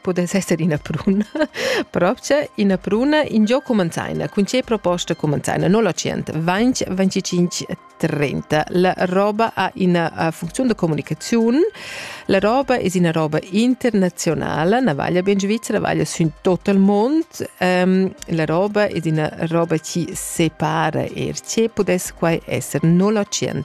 pudess esser ina pruna. Propcha ina pruna in gio cumanzaina, cun ce proposta cumanzaina 09 20 25 30. La roba ha ina funzione di comunicazione, la roba è una roba internazionale, ne vaglia ben Svizzera, vaglia in tutto il mondo, um, la roba è una roba che separa er ce, pudesse qua essere 09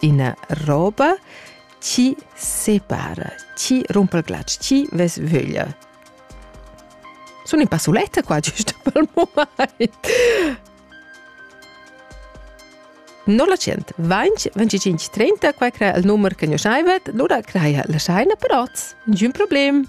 Ina roba chi separa, chi rumpa il glatsch, chi ves vöglia. Sun in passuletta qua giusto pel mumaint. Non la tschient, 20 25 30, qua crea il numer che nus schaivet, lura crea la schaina per oz. Niciun problem.